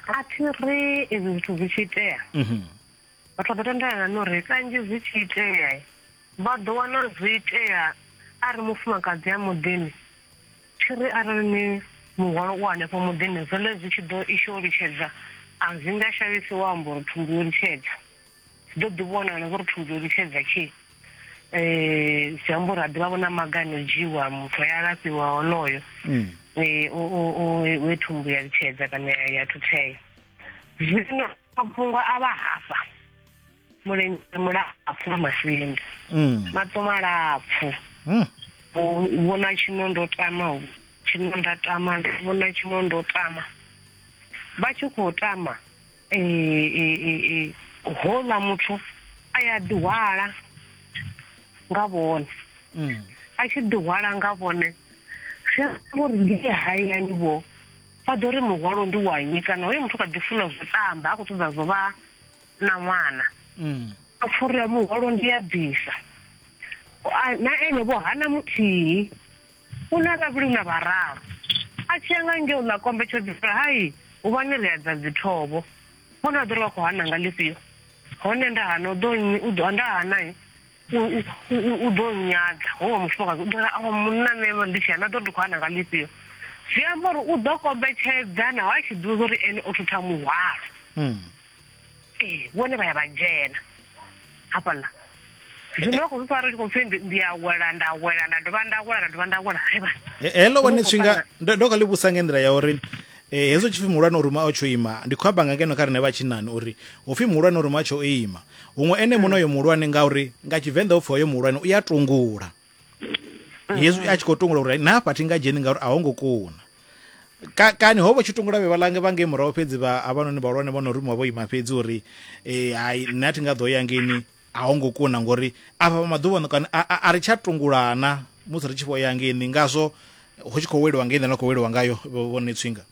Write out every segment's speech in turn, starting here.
a thi ri izwi zwithu zwi tshi itea mhm. vhathu vha ḓo tendelana no ri kanzhi zwi tshi itea vha ḓo wana zwi itea a ri mufumakadzi a muḓini thi ri arali ni muhwalo u hanefho muḓini zwone zwi tshi ḓo isho litshedza a zwi nga shavhisi wa amba uri thumbu yo litshedza Zwi ḓo ḓi vhonala zwo ri thusa uri tshedza tshi um zwi amba uri ha ḓivha vho na maga ano dzhiwa muthu a ya alafhiwa honoyo um we thumbu ya litshedza kana ya thuthea zwino mafhungo a vha hafha mulenzhe mulapfu wa masinda mm. maṱo malapfu mm. vhona tshino ndo tama tshino nda tama vhona tshino ndo tama vha tshi khou tama houḽa muthu a ya ḓihwala nga vhone mm. a tshi ḓihwala nga vhone zwi amba uri ndi ye hayani vho vha ḓo ri muhwalo ndi wa nnyi kana hoyo muthu kha ḓi funa zwo tamba a khou ṱoḓa zwo vha na ṅwana mm. a pfurira muhwalo ndi a bvisa na ene vho hana muthihi u na vhavhili na vhararu a tshi ya nga ngeo ḽa kombetshedzo uri hai huvhani ri adza dzithovho hone a ḓo ri vha khou hana nga ḽifhio hone nda hana u ḓo nnyi u ḓo nda hana u ḓo nyadza ho wa mufumakadzi u ḓoa awa munna nṋe ndi tshi hana ḓo ndi khou hana nga ḽifhio zwi amba uri u ḓo kombetshedza naho a tshi ḓivha uri ene o thutha muhwalo hmm. ee vhone vha ya vha dzhena hafhaḽa zwino vha khou zwi fara ndi khou pfhi ndi a wela nda wela nda dovha nda wela nda dovha nda wela haiba heḽo vhone tshifhinga ndo kha ḽi vhusa nga nḓila ya uri eh hezwo tshipfi muhulwane uri ma tsho ima ndi khou amba nga ngeno kha rine vha tshinani uri upfi muhulwane uri ma tsho ima huṅwe ene muno yo muhulwane ngauri nga tshivenḓa upfi hoyo muhulwane u ya tungula mm-hmm. hezwi a tshi khou tungula uri na hafha thi nga dzheni ngauri a ho ngo kuna ka kani ho vha tshi tungula vhe vha lange vha ngei murahu fhedzi vha avhanoni vhahulwane vho no rumiwa vho ima fhedzi uri um hai nṋe a thi nga ḓo ya ngeni a ho ngo kuna ngori afha maḓuvhano kana a ri tsha tungulana musi ri tshi vho ya ngeni ngazwo hu tshi khou weliwa ngei nḓila na khou weliwa ngayo vhone tswinga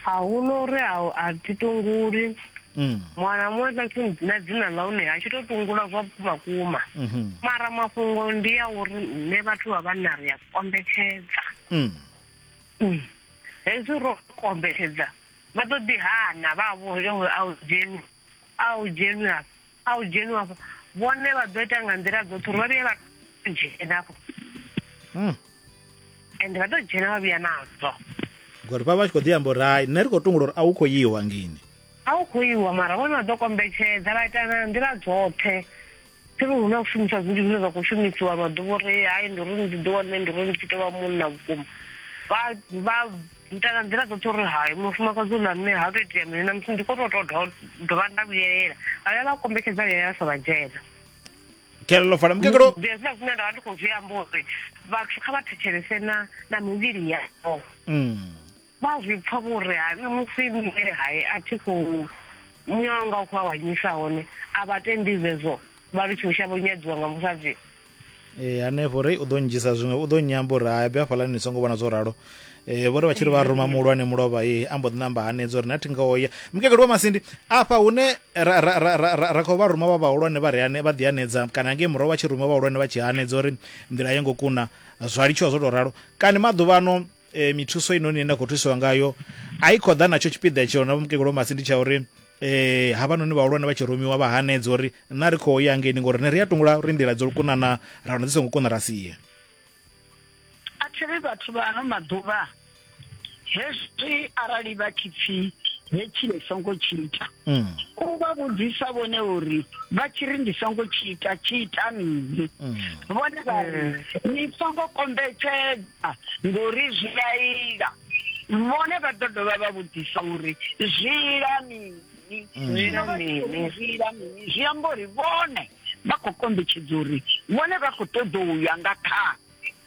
hahuno uri a a thi tunguli Mm. mwana muṅwe na tshi- na dzina ḽa hune a tshi to tungula zwa vhukuma kuma Mhm. mara mafhungo ndi ya uri nṋe vhathu vha vhanna ri a kombetshedza Mm. Mm. hezwi ro kombetshedza vha ḓo ḓi hana vha vho yo a u dzheni a u dzheni a A u dzheniwa afho vhone vha ḓo ita nga nḓila dzoṱhe uri vha vhuye vha dzhena afho hmm. ende vha ḓo dzhena vha vhuya nazwo ngori vha vha tshi khou ḓi amba uri hai nṋe ri khou tungula uri a u khou yiwa ngini a u khou iwa mara vhone vha ḓo kombetshedza vha ita na nḓila dzoṱhe thiri hu na u shumisa zwinzhi zwine zwa khou shumisiwa maḓuvha uri hai ndi uri ndi ḓiwane ndi uri ndi tshi tovha munna vhukuma vha ita nga nḓila dzoṱhe uri hayi mufumakadzi u na mme ha u to itea mini na musi ndi kho to to dovha nda vhuyelela vhaya vha kombetshedza vhuyelela sa vha dzhena kelelo fana mukegelo zwina zwine nda vha ndi khou zwi amba uri vhathu kha vha thetshelese na na mivhili yavho mm. vha zwi pfa vhuri ha nṋe musi nṋe hayi a thi khou nyanga u khou awanyisa hone a vha tendi zwezwo vha ri tshiusha vho nyadziwa nga musadzi Eh, hanefho rei u ḓo ndzhisa zwiṅwe u ḓo nyamba uri hai bya hafhaḽani ni songo vhona zwo ralo eh, vho ri vha tshi ri vha ruma muhulwane mulovha ye a mbo ḓi namba hanedza uri na thi nga oya mukegelu wa masindi afha hune ra khou vha ruma vha vhahulwane vha reane vha ḓihanedza kana ngei murahu vha tshi ruma vhahulwane vha tshi hanedza uri nḓila yo ngo kuna zwa litshiwa zwo tou ralo kani maḓuvhano e, mithuso inoni ine nda khou thusiwa ngayo a i khou ḓa natsho tshipiḓa tsheo na vhomukegulu masi ndi tsha uri eh havhanoni vhahulwane vha tshi rumiwa vha hanedza uri na ri khou ya ngeni ngori ne ri a tungula uri nḓila dzo lukunana ra wana dzi songo kuna ra sie a thiri vhathu vha ano maḓuvha hezwi arali vha tshi pfi hetshi le songo tshi ita mm. u vha vhudzisa vhone uri vha tshi ri ndi songo tshi ita tshi ita mini mm. vhone vha ri mm. ni songo kombetshedza ngori zwi a ila vhone vha ḓo dovha vha vhudzisa uri zwi ila mini Mm. zwi amba uri vhone vha khou kombetshedza uri vhone vha khou ṱoḓa u ya nga kha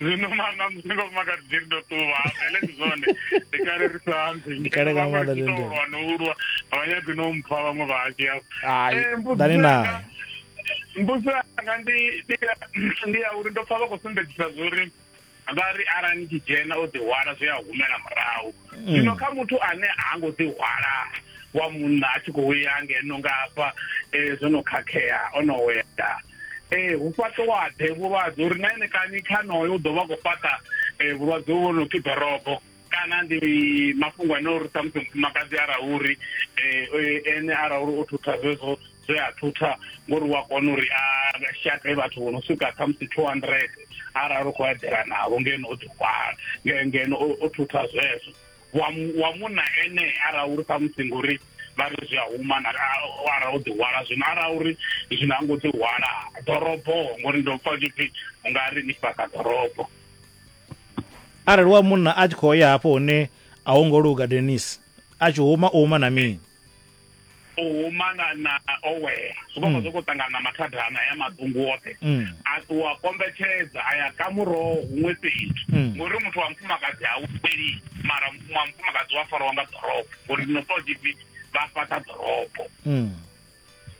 zwino manga musi nga mufumakadzi dzi ri ndo ṱuwa vele ndi zwone ndi kale ri sa ambi Ndi kale nga maanḓa ndi nḓila. ulwa no ulwa avhanyagi no mpfa vhaṅwe vha hashu yao Ai, Eh, mbudziso ḓani yanga- nayo. mbudziso yanga ndi ndi ya- ndi ya uri ndo pfa vha khou sumbedzisa zwori vha ri arali ni tshi dzhena o ḓihwala zwi a humela murahu mm. zwino kha muthu ane ha ngo ḓi hwala wa munna a tshi khou ya ngeno nga hafha um eh, zwo no khakhea o no wela um hu fhaṱowaḓe vhulwadze uri na ene kani khanoyo u ḓo vha khou fhaṱa um vhulwadze vho no pfi dorobo kana ndi mafhungo ane uri samusi mufumakadzi arauri um ene arauri o thutha zwezwo zwe a thutha ngori wa kona uri a shate vhathu vho no swika khamusi two hundred arali u khou eḓela navho ngeno o ḓihwala ngeno o thutha zwezwo wa munna ene arali uri khamusi ngori vha ri zwi a huma arali o ḓihwala zwino arali uri zwino a ngo ḓihwala ḓorobo ngori ndo pfa tshipfi u nga ri ni fhaka ḓorobo arali wa munna a tshi khou ya hafho hune a ho ngo luga denis a tshi huma u huma na mini o huma na na owela zwi vha mm. zwi khou ṱangana na mathada ana ya maḓungu oṱhe mm. a ṱuwa kombetshedza a ya ka muroho huṅwe fhethu mm. ngori muthu wa mufumakadzi ha upeli mara wa mufumakadzi wa fariwa nga ḓorobo ngori no to dipi vha fhaṱa ḓorobo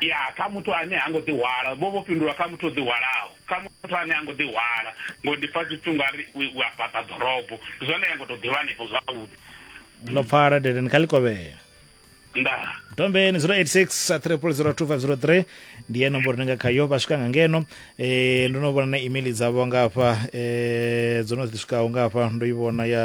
ya kha muthu ane ha ngo ḓihwala vho vho fhindula kha muthu o ḓihwalaho kha muthu ane ha ngo ḓihwala ngo ndi pfa zwithu nga ri u a fhaṱa ḓorobo zwone ya ngo tou ḓivha hanefho zwavhuḓi no pfala dedeni kha likovhela nda dombeni 086 3002503 ndi ye nomboro ni nga khayo vha swika nga ngeno eh ndo no vhona na email dzavho nga hafha eh dzo no ḓi swikaho nga hafha ndo i vhona ya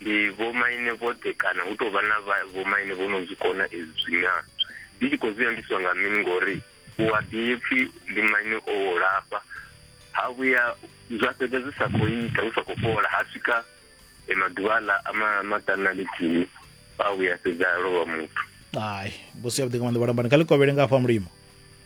Ndi vhomaine vhoṱhe kana hu tou vha na vha vhomaine vho no zwi kona ezwi zwi naa? Ndi tshi khou zwi ambiswa nga mini ngori u a ḓi pfi ndi maine o lafha ha vhuya zwa fhedza zwi sa khou ita hu sa khou fhola ha swika maḓuvha aḽa a ma maṱanu na ḽithihi a vhuya fhedza a lovha muthu. Hai, mbudziso yavhuḓi nga maanḓa vhalambani. Kha ḽi kovhele nga hafha Mulimo.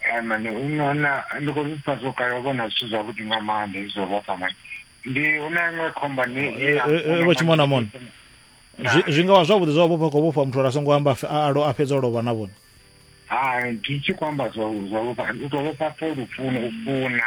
Eh, mane u nona ndi khou zwipfa zwo kale u vhona zwithu zwavhuḓi nga maanḓa izwo vhofha mane ndi hu na iṅwe khomba ni eh, eh, vho tshimona mona zwi nga vha zwavhuḓi zwa vhofha khou vhofha muthu uri a songo amba a fhedza o lovha na vhone hai ndi tshi khou amba zwa zwa vhofha u tou vhofha fo lufuni u funa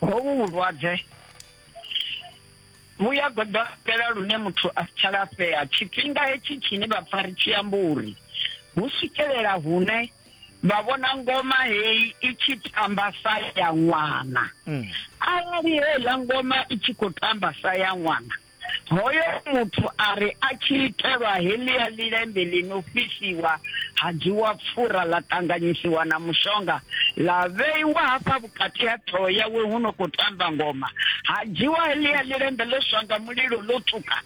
hovhu vhulwadze vhu ya goḓombela lune muthu a si tsha lafhea tshifhinga hetshi tshine vha pfa ri tshi amba uri hu swikelela hune vha vhona ngoma heyi i tshi tamba sa ya ṅwana mm. arali heiḽa ngoma i tshi khou tamba sa ya ṅwana mm. Hoyo muthu a ri a tshi itelwa heḽia ḽilembe ḽi no fhisiwa, ha dzhiwa pfura ḽa ṱanganyisiwa na mushonga ḽa vheiwa hafha vhukati ha ṱhoho yawe hu no khou tamba ngoma. Ha dzhiwa heḽia ḽilembe ḽo swa nga mulilo ḽo tswuka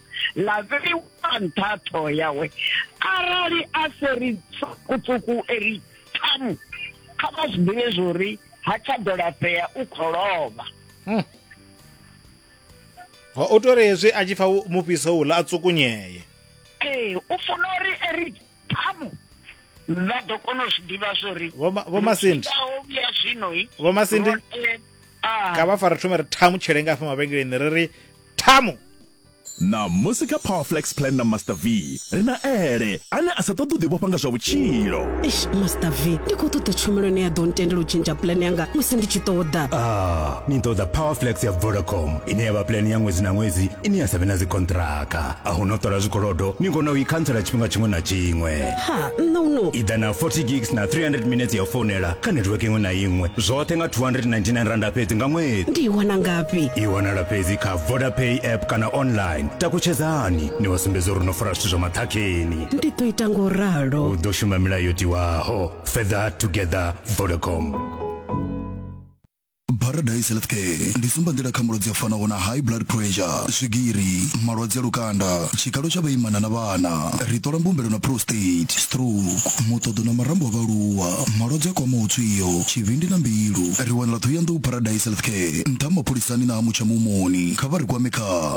ḽa vheiwa nṱha ha ṱhoho yawe. Arali a se ri tswuku-tswuku e ri thamu, kha vha zwi ḓivhe zwa uri ha tsha ḓo lafhea, u khou lovha. o to ri hezwi a tshi pfa mufhiso uḽa a tsukunyeye ee u funa uri eri ṱhamu vha ḓo kona u zwi ḓivha zwo ri vho masindi ya zwino vho masindi kha vha fara thome ri ṱhamu tshele nga afha mavhengeleni ri ri ṱhamu na musi kha powerflex plan na master v Ri na Ele, ane a sa ṱoḓi u ḓivhofha nga zwa vhutshilo. Eish, Master V, ndi khou ṱoḓa tshumelo ine ya ḓo ntendela u tshintsha puḽane yanga musi ndi tshi ṱoḓa. Ah, ni ṱoḓa Powerflex ya Vodacom, ine ya vha puḽane ya ṅwedzi na ṅwedzi ine ya sa vhe na dzikonṱiraka. A hu na u ṱola zwikolodo, ni kona u i khantsela tshifhinga tshiṅwe na tshiṅwe. Ha, nṋe u no. I ḓa na 40 gigs na 300 minetse ya u founela kha netiweke iṅwe na iṅwe, zwoṱhe nga R299 fhedzi nga ṅwedzi. Ndi i wana ngafhi? I wanala fhedzi kha Vodapay app kana online. Takutshedzani! ni wa sumbedza uri no fara zwithu zwa maṱhakheni ndi ḓo ita ngo ralo u ḓo shuma milayo yo tiwaho feather together vodacom paradise healthcare ndi sumbanḓila kha malwadze a fanaho na high blood pressure swigiri malwadze a lukanda tshikalo tsha vhaimana na vhana ri ṱola mbumbelo na prostate stroke muṱoḓo na marambo a vhaaluwa malwadze a kwamaho tswio tshivhindi na mbilu ri wanala thohoyanḓou paradise healthcare nṱha mapholisani na ha mutsha mumoni kha vha ri kwame kha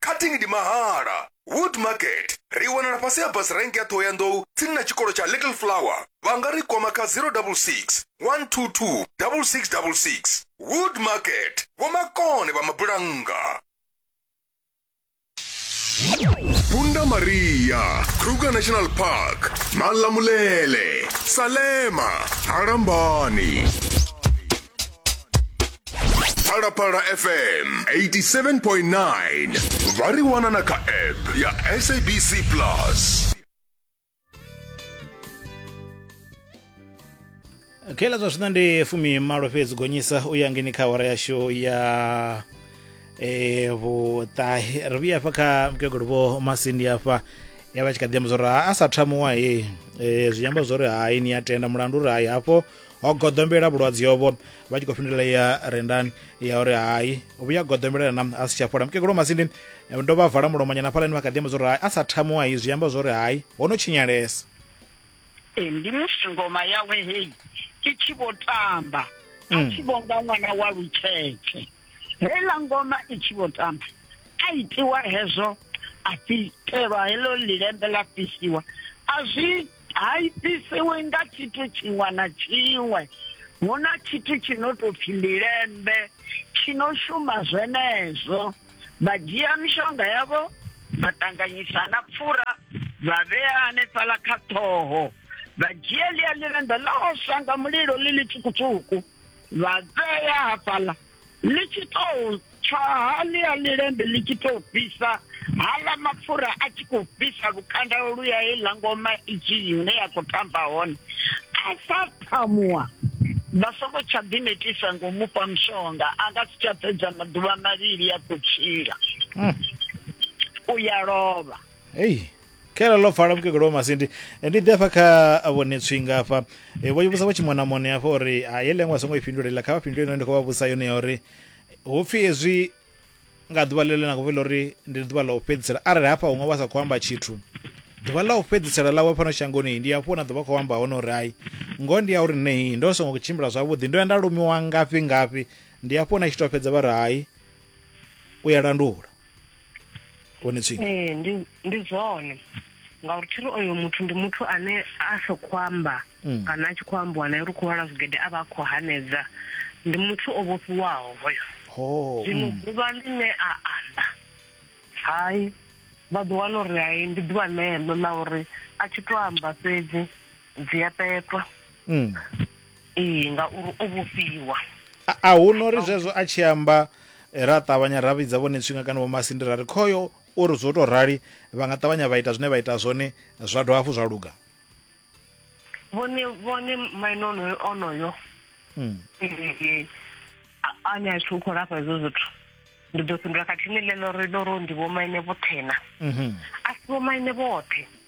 cutting ndi mahala wood market ri wanala fhasi ha bus rank ya thohoyandou tsini na tshikolo tsha little flower vha nga ri kwama kha 066 122 6666 wood market vhomakone vha mabulannga Bunda Maria, Kruger National Park, Malamulele, Salema, Harambani. phalaphala fm 87.9 vha ri wana na kha app ya sabc plus khaela zwa zwino ndi fumi malo fhedzi gonyisa u ya ngeni kha awara yashu ya eh, vhuṱahe ri vhuya afha kha mukegulu vho masindi afha ya vha tshi kha ḓi amba zwa uri ha a sa thamuwa he eh, zwi amba zwa uri hai ni a tenda mulandu uri hai hafho ho goḓombela vhulwadze ovho vha tshi khou fhindulela ya rendani ya uri hai vhuya goḓombela na a si tsha fhola mukegulu masindi eh, ndo vha vala mulomonyana hafhalani vha kha ḓi amba zwauri hai a sa thamuwa hezwi amba zwauri hai ho no tshinyalesa eh, ndi musi ngoma yawe heyi i tshi vho tamba a mm. tshi vho nga ṅwana wa lutshetshe heiḽa ngoma i tshi vho tamba a itiwa hezwo a fhitelwa heḽo lilembe ḽa fhisiwa a zwi ha ifhisiwi nga tshithu tshiṅwe na tshiṅwe hu na tshithu tshi no tou pfhi milembe tshi no shuma zwenezwo vha dzhia mishonga yavho vha ṱanganyisa na pfura vha vhea hanefhala kha ṱhoho vha dzhia ḽia ḽirenda ḽa oswa nga mulilo ḽi ḽitswukutswuku vha vhea hafhaḽa ḽi tshi tou tsha haḽia ḽilembe ḽi tshi tou fhisa haḽa mapfura a tshi khou fhisa lukanda luya heiḽa ngoma i tshi hune ya khou tamba hone a sa phamuwa vha songo tsha ḓinetisa ngo mu fha mushonga a nga si tsha fhedza maḓuvha mavhili a khou tshila hmm. u ya lovha khela ḽo pfala mukegulu wa masindi Eh, ndi ḓi afha kha vhone tswinga afha Eh, vho vhusa vho tshimonamone afha uri ha ye lengwa songo i fhindulela kha vha fhindule ine ndi khou vha vhusa yone ya uri hu pfhi hezwi nga ḓuvha ḽeḽo na khou fhela uri ndi ḓuvha ḽa u fhedzisela arali hafha huṅwe vha sa khou amba tshithu ḓuvha ḽa u fhedzisela ḽawe fhano shangoni ndi hafho na ḓuvha khou amba hone uri hai ngoho ndi ya uri nei ndo songo tshimbila zwavhuḓi ndo ya nda lumiwa ngafhi ngafhi ndi hafho na tshi tou fhedza vha ri hai u ya landula hone tsini ee ndi ndi zwone ngauri thiri oyo muthu ndi muthu ane a sa khou amba mm. kana a tshi khou ambiwa naye ri khou lwala zwigede a vha a khou hanedza ndi muthu o vhofhiwaho hoyo zwino mm. ḓuvha ḽine a amba hai vha ḓo wana uri hai ndi ḓuvha ḽeḽo ḽa uri a tshi to amba fhedzi dzi a petwa mm. Ee, ngauri o vhofhiwa. A, a hu nori zwezwo a tshi amba eh, ra ṱavhanya ra vhidza vhone tswinga kana vho masindi ra ri khoyo o ri zwo tou rali vha nga ṱavhanya vha ita zwine vha ita zwone zwa dovha hafhu zwa luga Vhone vhone maine onoyo onoyo. Mm. Eh, a- ane a tshi u khou lafha hezwo zwithu. Ndi ḓo fhindula khathihi ni ḽeḽo ri ḽo ro ndi vho maine vhothena. Mhm. A si vho maine vhoṱhe.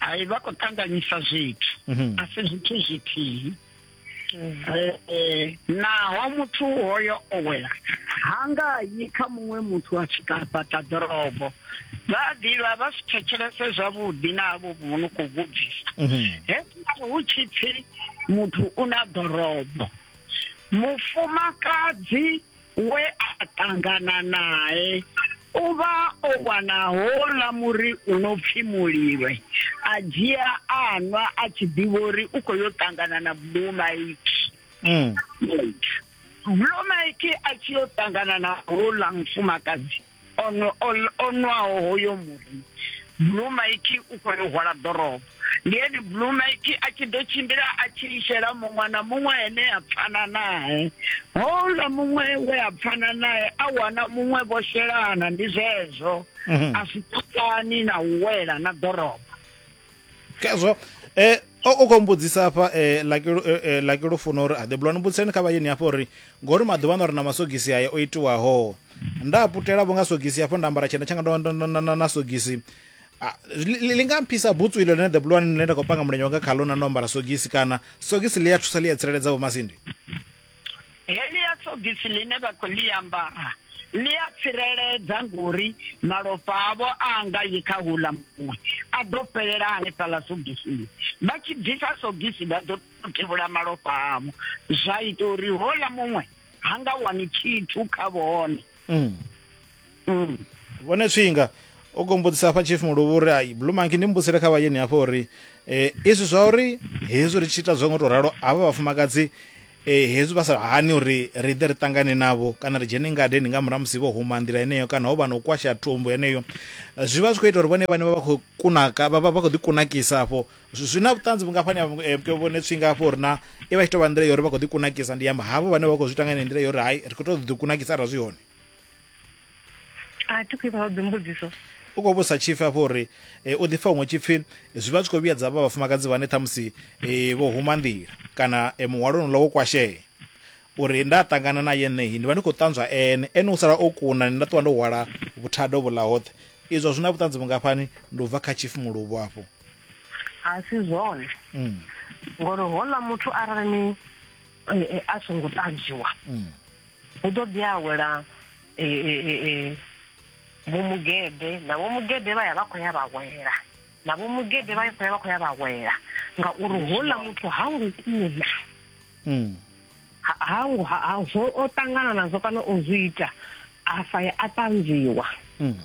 hai vha khou ṱanganyisa zwithu mhm. a si zwithu zwithihi eh, eh, naho muthu hoyo o wela ha nga yi kha muṅwe muthu a tshi kapaṱa ḓorobo vha ḓivha vha si thetshelese zwavhuḓi na avho vhono khou vhudzisa mhm. hezwi hu tshi pfi muthu u na ḓorobo mufumakadzi we a ṱangana nae o vha o wana houḽa muri u no pfi mulilwe a dzhia a nwa a tshi ḓivha uri u khou yo ṱangana na blue mike mm. blue mike a tshi yo ṱangana na houḽa mufumakadzi o nwa, o, o nwaho hoyo muri, Blue Mike u khou yo hwala ḓorobo. Ndi ene Blue Mike a tshi ḓo tshimbila a tshi ishela muṅwe na muṅwe ane a pfana nae. Houḽa muṅwe we a pfana nae a wana muṅwe vho shelana, ndi zwezwo. A si ṱoḓani na u wela na ḓorobo. kezwo um o khou mbudzisa afha um laki lufuno uri a ḓe bulwani mbudziseni kha vhayeni hafho uri ngori maḓuvha ano ri na masogisi aya o itiwaho nda putela vho nga sogisi hafho nda ambara tshena tshanga ndo na sogisi Ah, li nga mphisa butsu ilo ḽine the blue one ḽine nda khou panga mulenzhe wanga khalo na ndo ambara sogisi kana sogisi ḽi a thusa ḽi a tsireledza vhomasindi Helia sogisi ḽine vha khou ḽi ambara ḽi a tsireledza ngori malofha avho a nga yi kha houḽa muṅwe, a ḓo fhelela hanefhaḽa sogisini. Vha tshi bvisa sogisi vha ḓo tevhula malofha avho, zwa ita uri houḽa muṅwe ha nga wani tshithu kha vhone. mm. mm. vhone tswinga o gombodzisa hafha chief muluvhu uri ai blue monkey ndi mbusele kha vhayeni hafho uri eh, izwi zwa uri hezwi ri tshi ita zwo ngo to ralo havha vhafumakadzi eh, hezwi vha sa hani uri ri ḓe ri ṱangane navho kana ri dzhene ngadeni nga murahu musi vho huma nḓila yeneyo kana ho vha na u kwasha thumbu yeneyo zwi vha zwi khou ita uri vhone vhane vha vha khou kunaka vha vha khou ḓikunakisa afho zwi na vhuṱanzi vhungafhani ha eh, vhone tswinga hafho uri na i vha i tshi tou vha nḓila ya uri vha khou ḓi kunakisa ndi amba havho vhane vha khou zwi tanga ine nḓila ya uri hai ri khou tou ḓi kunakisa arali zwi hone a thi khou ipfa dzimbudziso u khou vhusa tshipfi hafho uri eh, u ḓifha huṅwe tshipfi zwi vha zwi khou vhuyedza vha vhafumakadzi vhane ṱhamusi eh, vho huma nḓila kana muhwalo nula wo kwashea uri nda ṱangana na yeneyi ndi vha ndi khou ṱanzwa ene ene u sala o kuna nda ṱuwa ndo hwala vhuthado vhuḽa hoṱhe izwo zwi na vhuṱanzi vhungafhani ndi u bva kha tshipfi muluvho afho a si zwone mm. ngori hola muthu arali ni eh, eh, a songo ṱanzwiwa mm. hu ḓo ḓi awela eh, vho mugede na vho mugede vha ya vha khou ya vha wela na vho mugede vha khou ya vha khou ya vha wela ngauri hola muthu ha ngo kuna mm. ha ha zwo o ṱangana nazwo kana o zwi ita a sa ya a ṱanzwiwa hmm.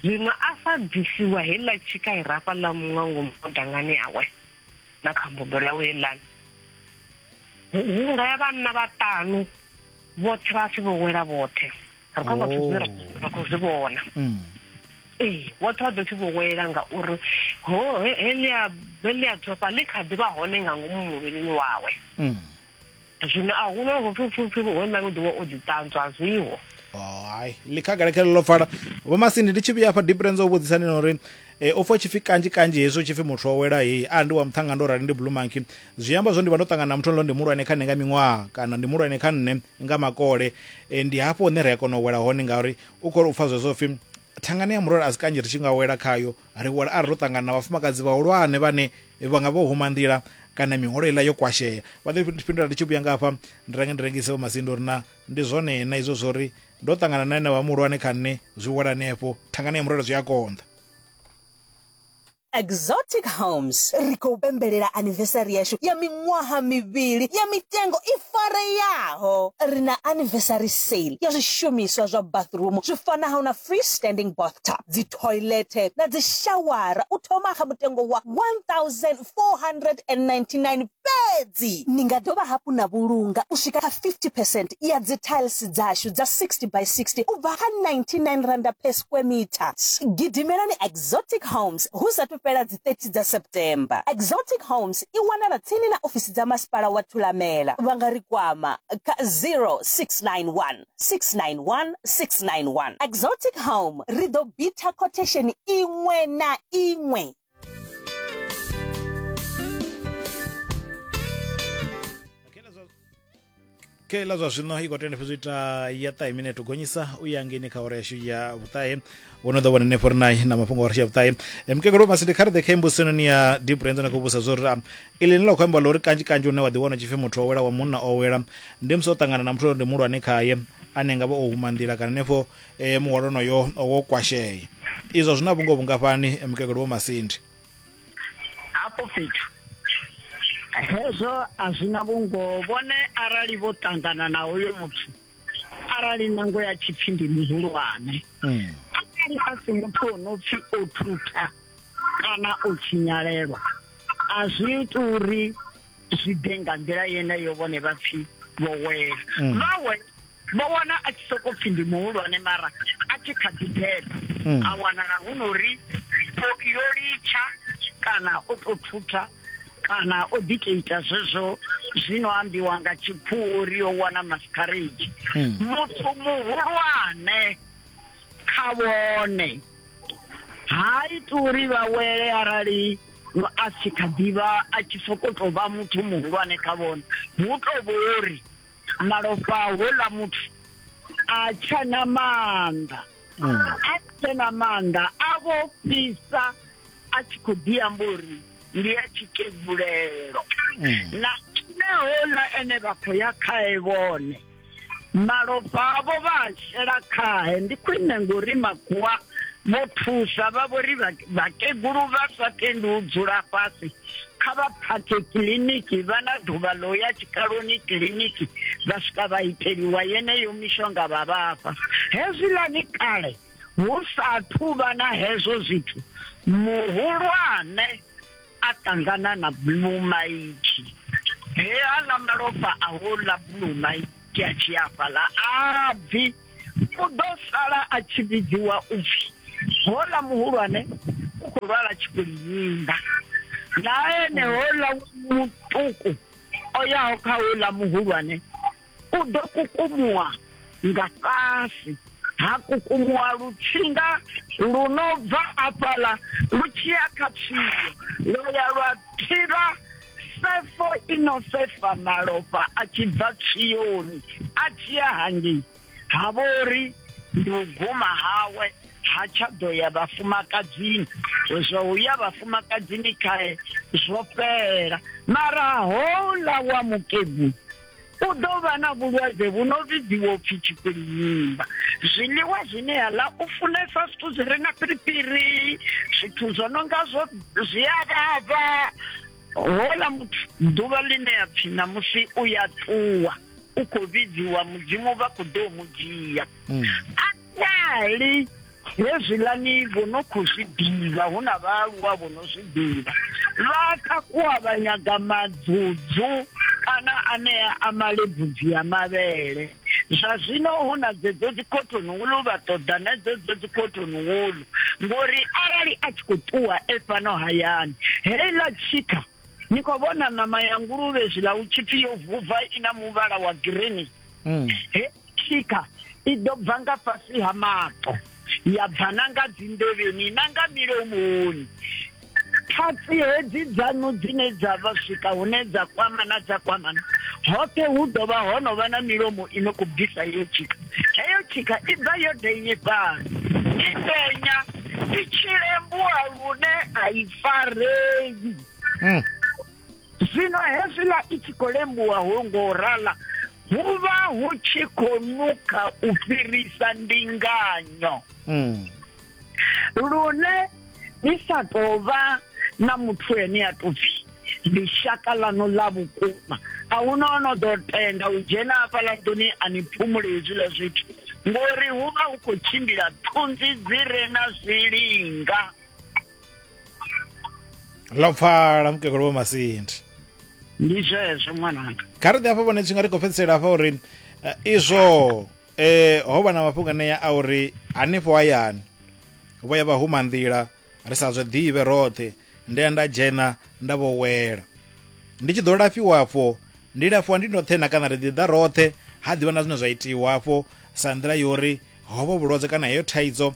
zwino a sa bvisiwa heiḽa tshika i rafha ḽa muṅwe ngomu dangani yawe na kha mbobelo yawe heiḽani hunga ya vhanna vhaṱanu vhoṱhe vha pfi vho wela vhoṱhe ri khou vhathu zwine ra khou zwi vhona hmm. ee vhoṱhe vha ḓo pfi vho wela ngauri heḽia heḽia dzofha ḽi kha ḓi vha hone nga ngomu muvhilini wawe hmm. zwino a hu na vhupfhipfhipfi ho nṋe u ḓiwa o ḓi ṱanzwa a zwiho oh, hai ḽi khagala khele ḽo pfala vho masindi ndi tshi vhuya hafha diprenz o vhudzisa ni nori e, o fa tshipfi kanzhi kanzhi hezwo tshipfi muthu o wela heyi a ndi wa muṱhanga ndo rali ndi blue monkey zwi amba zwo ndi vha ndo ṱangana na muthu nlo ndi muhulwane kha nṋe nga miṅwaha kana ndi muhulwane kha nṋe nga makole e, ndi hafho hune ri a kona u wela hone ngauri u khou u pfa zwezwo pfi thangani ya murole a si kanzhi ri tshi nga wela khayo Ri huwela arali ro ṱangana na vhafumakadzi vhahulwane vhane vha nga vho huma nḓila kana miholo iḽa yo kwashea. Vha ḓo fhindula, Ndi tshi vhuya nga hafha ndi range ndi rengise vho masinda uri na ndi zwone na izwo zwo ri ndo ṱangana na enevha muhulwane kha nṋe zwi wela henefho thangani ya murole zwi a konḓa. Exotic Homes, Ri khou pembelela anivesari yashu ya miṅwaha mivhili ya mitengo i fareaho. Ri na anivesari sale ya zwishumiswa zwa bathroom zwi fanaho na free standing bathtub, dzi thoilethe na dzishawara u thoma kha mutengo wa R1,499 fhedzi. Ni nga dovha hafhu na vhulunga u swika kha 50 percent ya dzithailisi dzashu dza 60 by 60 u bva kha R99 per square metre. Gidimelani Exotic Homes hu sa athu fhela dzi 30 dza September. Exotic Homes i wanala tsini na ofisi dza Masipala wa Thulamela. Vha nga ri kwama kha 0691. 691 691. Exotic Home ri ḓo bitha quotation iṅwe na iṅwe. kela zwa zwino i khou tenda fhedzi u ita ya ṱahe minete u gonyisa u ya ngeni kha ore yashu ya vhuṱahe wo no ḓo vhona henefho ri naye na mafhungo a ri shavhuṱahe mukegelo masi ndi khareḓe kha embosini ya dibrand na khou vhusa zwo ri ili ni la khou amba ḽa uri kanzhi kanzhi une wa ḓiwana u tshipfi muthu o wela wa munna o wela ndi musi o ṱangana na muthu uri ndi muhulwane khaye ane nga vha o huma nḓila kana henefho um muhwalo onoyo wo kwashea izwo zwi na vhungo vhungafhani mukegelo wo masindi hafho fhethu hezwo a zwi na vhungo vhone arali vho ṱangana na hoyo muthu arali nango ya tshipfi ndi muhulwane mm. arali a si muthu o no pfi o thutha kana o tshinyalelwa a zwi iti uri zwi ḓe nga nḓila yeneyo vhone vha pfi vho wela mm. vha wela vho wana a tshi sokou pfi ndi muhulwane mara a tshi kha ḓi beba mm. a wanala hu no ri yo litsha kana o tou thutha kana o dikeita zwezwo zwino ambiwa nga tshipfuwo uri yo wana mascarage hmm. muthu muhulwane kha vhone ha iti uri vha wele arali a si kha ḓivha a tshi sokou tou vha muthu muhulwane kha vhone hu tou vhori malofha houḽa muthu a tshena maanḓa mm. a tshena maanḓa a vho fhisa a tshi khou ḓi amba uri ndi ya tshikedzulelo mm. na ine houḽa ene vha khou ya khae vhone malofha avho vha a shela khae ndi khwine ngori makuwa vho thusa vha vhori vhakegulu vha sa tendi u dzula fhasi kha vha phakhe kiḽiniki vha na ḓuvha ḽo ya tshikaloni kiḽiniki vha swika vha iteliwa yeneyo mishonga vha vhafha hezwiḽani kale hu sa thuvha na hezwo zwithu muhulwane a ṱangana na blumaitshi he aḽa malofha a houḽa blumaitshi a tshi afhaḽa a bvi u ḓo sala a tshi vhidziwa u pfi hola muhulwane u khou lwala tshikuliyinga na ene hola muṱuku o yaho kha hola muhulwane u ḓo kukumuwa nga fhasi ha kukumuwa lutsinga lu no bva afhaḽa lu tshi ya kha tshiyo lwa ya lwa thivha sefo i no sefa malofha a tshi bva tshioni a tshi ya hangei ha vho ri ndi u guma hawe ha tsha ḓo ya vhafumakadzini zwa u ya vhafumakadzini khae zwo fhela mara houḽa wa mukegulu u ḓo vha na vhulwadze vhu no vhidziwa upfi tshipilimba zwiḽiwa zwine ya ḽa u funesa zwithu zwi re na piripiri zwithu zwo no nga zwo zwi a vhavha hola muthu ḓuvha ḽine ya pfi ṋamusi u ya ṱuwa u khou vhidziwa mudzimu vha khou ḓo mu dzhia mm. Arali hezwiḽani vho no khou zwi ḓivha, hu na vhaaluwa vho no zwi ḓivha, vha takuwa vha nyaga madzudzu kana anea a malebvudzi a mavhele, zwa zwino hu na dzedzo dzikhothoni wulu, vha ṱoḓa na dzedzo dzikhothoni wulu, ngori arali a tshi khou ṱuwa e fhano hayani, heiḽa tshikha ni khou vhona ṋama ya nguluvhe zwiḽa hu tshi pfi yo vuva i na muvhala wa girini, mm. he tshika i ḓo bva nga fhasi ha maṱo ya bva na nga dzinḓevheni na nga milomoni thatsi hedzi dzanu dzine dza vha swika hune dza kwamana dza kwamana hoṱhe hu ḓo vha ho no vha na milomo i no khou bvisa iyo tshika heyo tshika i bva yo denyefhala i denya i tshi lembua lune a i farei hmm. zwino hezwiḽa i tshi khou lembuwa ho ngo rala hu vha hu tshi khou nukha u fhirisa ndinganyo hmm. lune ni sa tou vha na muthu ene a tou pfhi ndi shaka ḽaṋu ḽa vhukuma a hu no no ḓo tenda u dzhena hafhaḽa nḓuni a ni phumule hezwiḽa zwithu ngori hu vha hu khou tshimbila thunzi dzi re na zwilinga ḽo pfala mukegulu vho masindi ndi zwezwo ṅwananga kha ri ḓi afha vhone tshinga ri khou fhedzisela afha uri eh, izwo eh ho vha na mafhungo anea a uri hanefho hayani vho ya vha huma nḓila ri sa zwe ḓivhe roṱhe ndi ya nda dzhena nda vho wela ndi tshi ḓo lafhiwa afho ndi lafhiwa ndi ndoṱhe na kana ri ḓi ḓa roṱhe ha ḓivha na zwine zwa itiwa afho sa nḓila yori hobo vhulwadze kana heyo thaidzo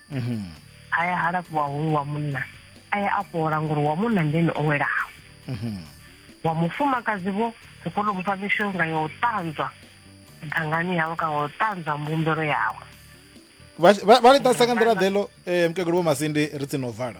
mhm. a ya ha lafhiwa hoyu wa munna a ya a fhola ngori wa munna ndene o welaho mhm. wa mufumakadzi vho ri kone u mufha mishonga ya u ṱanzwa dangani yawe kana u ṱanzwa mbumbelo yawe vha ḽi ṱasa nga nḓila ḓeḽo um eh, mukegulu vho masindi ri tsini u vala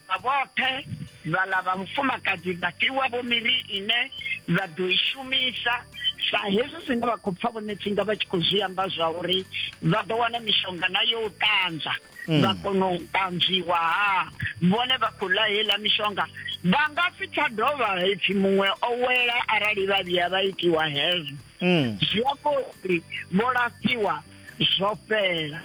Vha vhoṱhe vhaḽa vha vhufumakadzi vha fhiwavho miri ine vha ḓo i shumisa sa hezwi zwine vha khou pfa vhone tsinga vha tshi khou zwi amba zwa uri vha ḓo wana mishonga na yo u ṱanzwa mm. vha kona u ṱanzwiwa ha vhone vha khou ḽa heiḽa mishonga vha nga si tsha dovha ipfi muṅwe o wela arali vha vhuya vha itiwa hezwo mm. zwi amba uri vho lafhiwa zwo fhela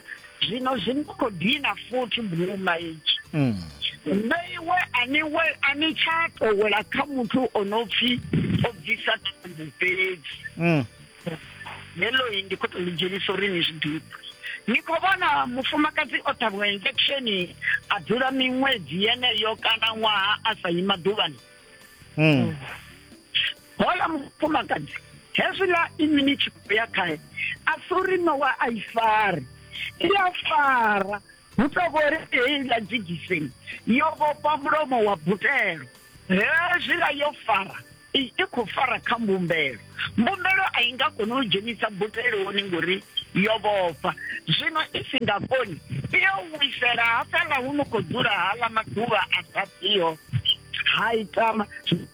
zwino zwi ni khou dina futhi buluma itshi mm. nṋe iwe ani we ani tsha towela kha muthu o no pfi o bvisa thumbu fhedzi mm. lelo yi ndi khou tou lidzhenisa uri ni zwi ḓipfa ni khou vhona mufumakadzi o ṱhavhiwa injection a dzula miṅwedzi yeneyo kana ṅwaha a sa yi maḓuvhani mm. Hola mufumakadzi hezwiḽa inwi ni tshi khou ya khae a si uri nowa a i fari i a fara hu tou vho ri heiḽa dzigiseni yo vhofha mulomo wa butelo hezwiḽa yo fara i i khou fara kha mbumbelo mbumbelo a i nga koni u dzhenisa buteloni ngori yo vhofha zwino i si nga koni i yo wisela hafhaḽa hu no khou dzula haḽa maḓuvha a sa ḓiho ha ita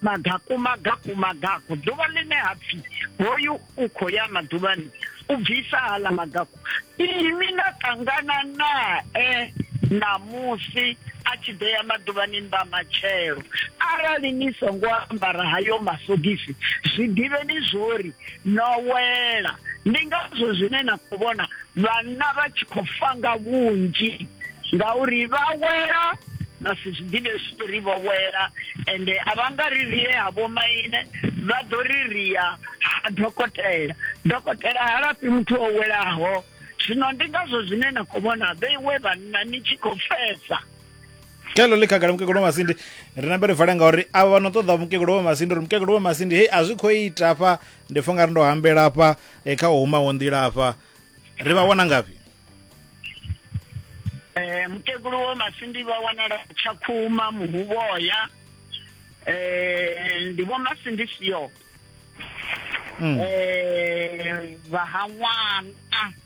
magaku magaku magaku ḓuvha ḽine ha pfi hoyu u khou ya maḓuvhani u bvisa haḽa magaku imi na ṱangana nae ṋamusi a tshi ḓo ya maḓuvhani mba matshelo arali ni songo ambara hayo masogisi zwi ḓivheni zwori no wela ndi ngazwo zwine na khou vhona Vhanna vha tshi khou fa nga vhunzhi ngauri vha wela vha si zwi ḓivhe zwithu ri vho wela ende a vha nga ri rie ha vhomaine vha ḓo ri ria ha dokotela dokotela ha lafhi muthu o welaho zwino ndi ngazwo zwine na khou vhona vheiwe vhanna ni tshi khou fesa kelo ḽi khagala mukegulu wa masindi ri nambe ri vale ngauri avha vha no ṱoḓa mukegulu wa masindi uri mukegulu wa masindi hei a zwi khou ita fha Ndi pfa ungari ndo hambela hafha eh, kha u humaho nḓila hafha. Ri vha wana ngafhi? Eh mukegulu wo Masindi vha wanala Tshakhuma Muhuvhoya. Eh ndi vho Masindi sio. Mm. Eh vha ha ṅwana.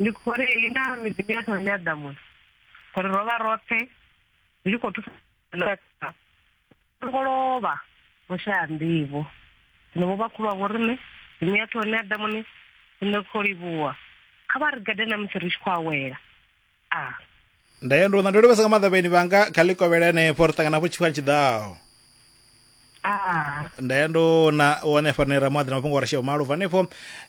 ndi khou ri ina miḓini ya thone ya ḓamuni ngori ro vha roṱhe ri tshi khou thusa songo lovha vho shaya nḓivho zwino vho vhakhulu wa vho riṋe miḓini ya thone ya ḓamuni ine khou livhuwa kha vha ri gade na musi ri tshi khou awela a nda ya ndoṋa ndo livhesa nga maanḓa vhaeni vhanga kha ḽi kovhele henefho ri ṱangana hafho tshifhinga tshi ḓaho a nda ya ndo na u wana hafha nera muaḓi na mafhungo wa rasheo malo bva hanefho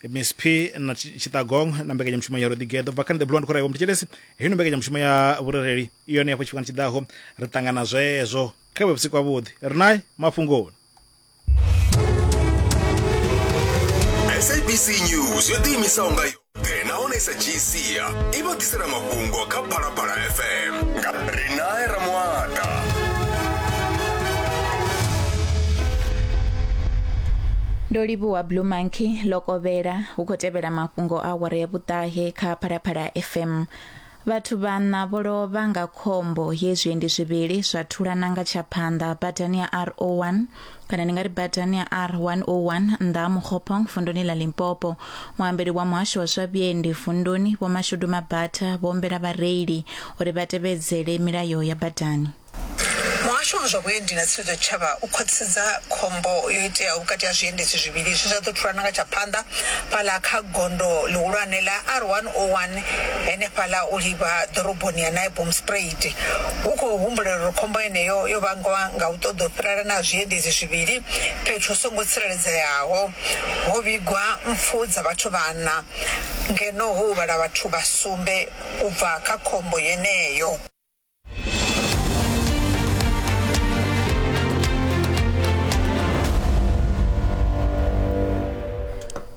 miss p na Tshi- tshitagong na mbekanyamushumo ya roḓigeḓo bva khani the blond khoraiwa mutetshelesi hino mbekanyamushumo ya vhurereli i yone hafho tshifhingani tshiḓaho ri ṱangana zwezwo kha vhe vhusiku havhuḓi ri naye mafhungoni sabc news yo ḓiimisaho nga yoṱhe nahone i sa dzhii sia i vha ḓisela mafhungo kha phalaphala fm nga rinae ramuata ndo livhuwa blue monkey lokovhela hu khou tevhela mafhungo a awara ya vhuṱahe kha phalaphala fm Vhathu vhaṋa vho lovha nga khombo ye zwiendi zwivhili zwa thulana nga tsha phanḓa badani ya R01 kana ndi nga ri badani ya R101 nnḓa ha Mokgopong vunduni ḽa Limpopo. Muambeli wa muhasho wa zwa vhiendi vunduni Vho Mashudu Mabatha vho humbela vhareili uri vha tevhedzele milayo ya badani. Muhasho wa zwa Vhuendi na Tsivhudzo Tshitshavha u khwaṱhisedza khombo yo iteaho vhukati ha zwiendedzi zwivhili zwe zwa ḓo thulana nga tsha phanḓa fhaḽa kha gondo ḽihulwane ḽa R101 henefhaḽa u livha ḓoroboni ya Naibomspruit. Hu khou humbulelwa uri khombo yeneyo yo vhangwa nga u ṱoḓa u fhirelana ha zwiendedzi zwivhili fhethu hu songo tsireledzeaho. Ho vhigwa mpfu dza vhathu vhaṋa ngeno ho huvhala vhathu vha sumbe u bva kha khombo yeneyo.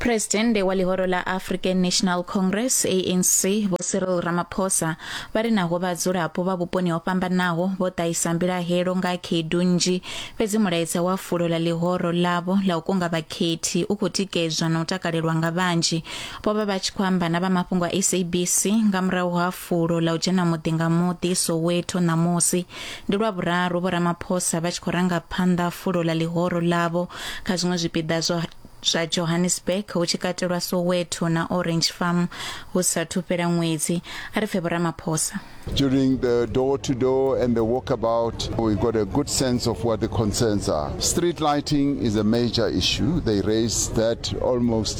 Presidente wa ḽihoro ḽa African National Congress ANC Vho Cyril Ramaphosa vha ri naho vhadzulapo vha vhuponi ho fhambanaho vho ṱahisa mbilahelo nga khaedu nnzhi fhedzi mulaedza wa fulo ḽa ḽihoro ḽavho ḽa u kunga vhakhethi u khou tikedzwa na u takalelwa nga vhanzhi vho vha vha tshi khou amba na vha mafhungo a SABC nga murahu ha fulo ḽa u dzhena muḓi nga muḓi Soweto ṋamusi. Ndi lwa vhuraru Vho Ramaphosa vha tshi khou ranga phanḓa fulo ḽa ḽihoro ḽavho kha zwiṅwe zwipiḓa zwa zwa Johannesburg hu tshi katelwa Soweto na Orange Farm hu sathu fhela ṅwedzi a ri pfe Vho Ramaphosa. During the door to door and the walkabout, we got a good sense of what the concerns are. Street lighting is a major issue. They raised that almost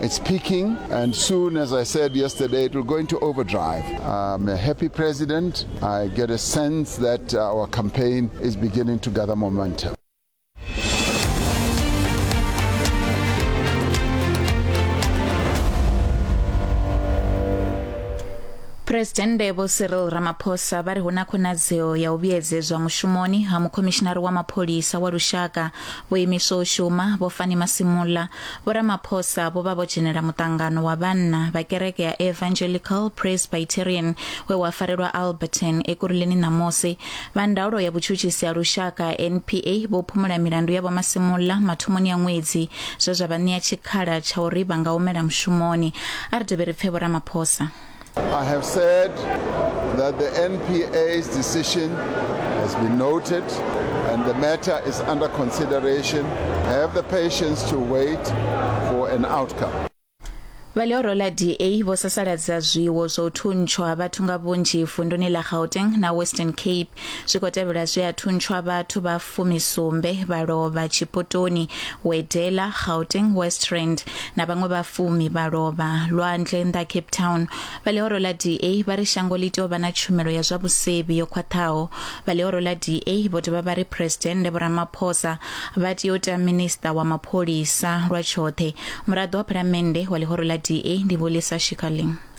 It's peaking, and soon, as I said yesterday, it will go into overdrive. I'm a happy president. I get a sense that our campaign is beginning to gather momentum. Presidennde Vho Cyril Ramaphosa vha ri hu na khonadzeo ya u vhuyedzedzwa mushumoni ha mukhomishinari wa mapholisa wa lushaka vho imiswa u shuma vho Fani Masimula Vho Ramaphosa vho vha vho dzhenela muṱangano wa vhanna vha kereke ya Evangelical Presbyterian we wa farelwa Alberton Ekurhuleni ṋamusi. Vha ndaulo ya vhutshutshisi ha lushaka NPA vho phumula milandu ya Vho Masimula mathomoni a ṅwedzi zwe zwa vha ṋea tshikhala tsha uri vha nga humela mushumoni. A ri dovhe ri pfe Vho Ramaphosa. I have said that the NPA's decision has been noted and the matter is under consideration. Have the patience to wait for an outcome. vha ḽihoro ḽa da vho sasaladza zwiwo zwa u thuntshwa vhathu nga vhunzhi vunduni ḽa gauteng na western cape zwi khou tevhela zwe a thuntshwa vhathu vha fumisumbe vha lovha tshipotoni wedela gauteng west rand na vhaṅwe vha fumi vha lovha lwanzhe nnḓa cape town vha ḽihoro ḽa da vha ri shango ḽi tea u vha na tshumelo ya zwa vhusevhi yo khwaṱhaho vha ḽihoro ḽa da vho dovha vha ri phuresidennde vho ramaphosa vha tea u tea minista wa mapholisa lwa tshoṱhe muraḓo wa phalamennde wa ḽihoro ḽa da ndi vho lisa shikaling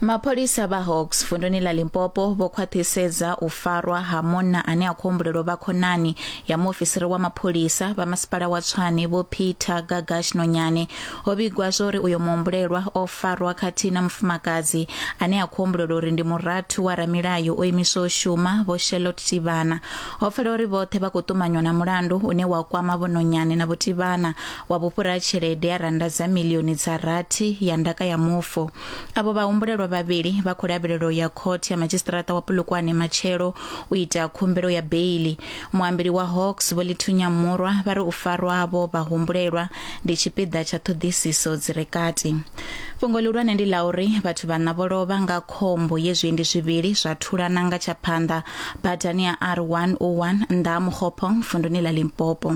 mapholisa vha hawks vunduni ḽa limpopo vho khwaṱhisedza u farwa ha munna ane a khou humbulelwa vha khonani ya muofisiri wa mapholisa vha masipala wa tshwane vho peter gagash nonyane ho vhigwa zwa uri uyo muhumbulelwa o farwa khathihi na mufumakadzi ane a khou humbulelwa uri ndi murathu wa ramilayo o imiswa u shuma vho shelot tivhana ho pfela uri vhoṱhe vha khou ṱumanywa na mulandu une wa kwama vhononyane na vhutibana wa vhufhura ha tshelede ya rannda dza milioni dza rathi ya ndaka ya mufu avho vhahumbulelwa vhavhili vha khou lavhelela u ya khothe ya madzhisiṱiraṱa wa pulukwane matshelo u ita khumbelo ya beili muambeli wa hawks vho lithunya murwa vha ri u farwa havho vhahumbulelwa ndi tshipiḓa tsha ṱhoḓisiso dzi re kati fhungo ḽihulwane ndi ḽa uri vhathu vhaṋa vho lovha nga khombo ye zwiendi zwivhili zwa thulana nga tsha phanḓa badani ya r101 nnḓa ha mukhopong vunduni ḽa limpopo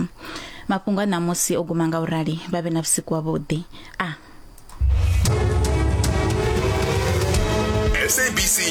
Mafhungo a ṋamusi o guma nga u rali. Vha vhe na vhusiku wavhuḓi. A. SABC